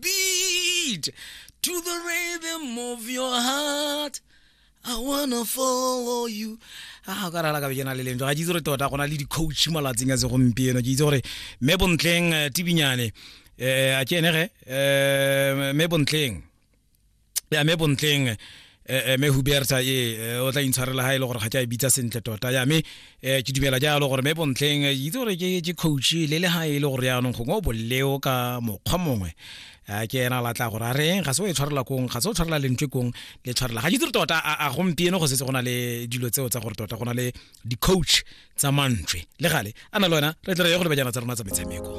beat to the rhythm of your heart I wanna follow you a ka rala ka bejana le leng ga ke itse gore tota go na le di-coach malatsing a segompieno ke itse gore mme bontleng eh, tibinyane um a ke ene ge um mme bontleng ya me bontleng eh, eh, me huberta e eh, o tla intshwarela ga e le gore ga ke a e bitsa sentle tota ya me eh, ke dumela jalo gore me bontleng eh, itse gore ke ke coach le le ga e le gore yaanong gongwe o boleo ka mokgwa mongwe Ah, ke ena la tla gore a reng ga se o e tshwarela kong ga se o tshwarela lentswe kong le tshwarela ga ke dire tota a a gompieno go setse go na le dilo tseo tsa gore tota go na le di-coach tsa mantswe le gale a na le wena re tle re ye go lebajana tsa rona tsa metshameko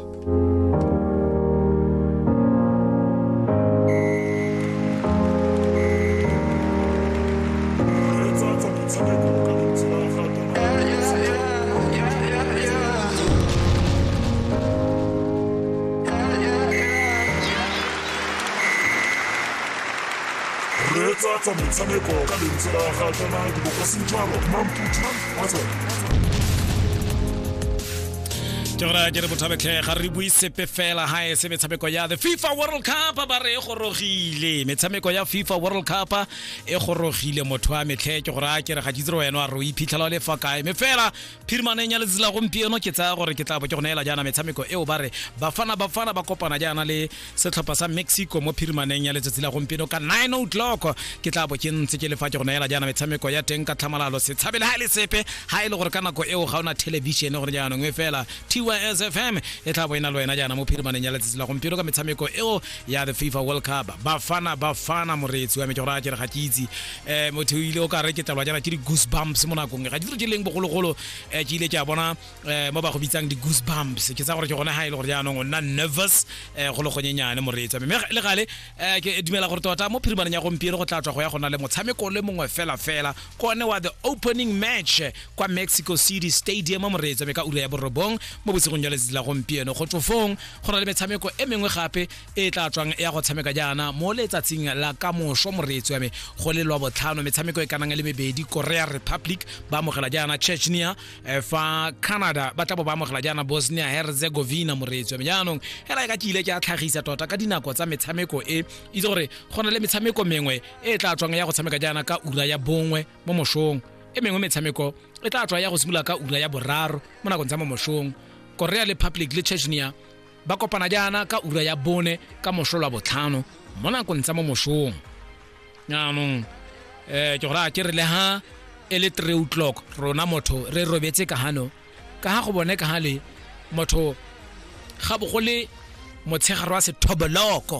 reetsa tsa metshameko ka lentswe la ga tsena dibokosentshwaro mamputso wa tsona ke gore a ke re bothabetlhe ga re bue sepe fela ga e se metshameko ya the fifa world cup ba re e gorogile metshameko ya fifa world cup e gorogile motho a metlhe ke gore a ke re ga ke itse re wena a re o iphitlhela o le fa kae me fela phirimaneng ya letsela gompieno ke tsaya gore ke tla bo ke go neela jaana metshameko eo ba re bafana bafana ba kopana jaana le setlhopha sa mexico mo phirimaneng ya letsatsi la gompieno ka 9 o'clock ke tla bo ke ntse ke lefa ke go neela jaana metshameko ya teng ka tlhamalalo se tshabele ga e le sepe ga e le gore ka nako eo ga ona television gore jaanong e fela tys fm e tla bo e na le wena jaana mo phirimaneng ya letsatsi la gompieno ka metshameko eo ya the fifa world cup bafana bafana moreetsi wa me ke gore a ke re ga ke itse eh motho o ile o ka re ke tlelwa jana ke di-goose bumps mo nakong ga ditiro tse leng bogologolo um ke ile ke a bona um mo ba go bitsang di-goose bumps ke tsa gore ke gone ga e le gore jaanong o nna nervous um go le gonyenyane moreetsa mme le gale um ke dumela gore tota mo phirimaneng ya gompieno go tla tswa go ya gona le motshameko le mongwe fela fela kone wa the opening match kwa mexico city stadium moreetsa mme ka ura ya borobong mo bosigong jwa letsatsi la gompieno go tsofong go na le metshameko e mengwe gape e tla tswang ya go tshameka jaana mo letsatsing la kamoso moreetsi wa me go le lwa botlhano metshameko e kanang le mebedi korea republic ba amogela jaana chechnia eh, fa canada ba tla bo ba amogela jaana bosnia herzegovina moreetsi wa me jaanong hela e ka ke ile ke a tlhagisa tota ka dinako tsa metshameko e itse gore go na le metshameko mengwe e tla tswang ya go tshameka jaana ka ura ya bongwe mo mosong e mengwe metshameko e tla tswa ya go simolola ka ura ya boraro mo nakong tsa mo mosong korea republic le chechnia ba kopana jaana ka ura ya bone ka moso lwa botlhano mo nakong tsa mo mosong jaanong um ke gore a ke re le ha e le three o'clock rona motho re robetse ka hano ka ha go bone ka hale motho ga bogole motshegare wa sethoboloko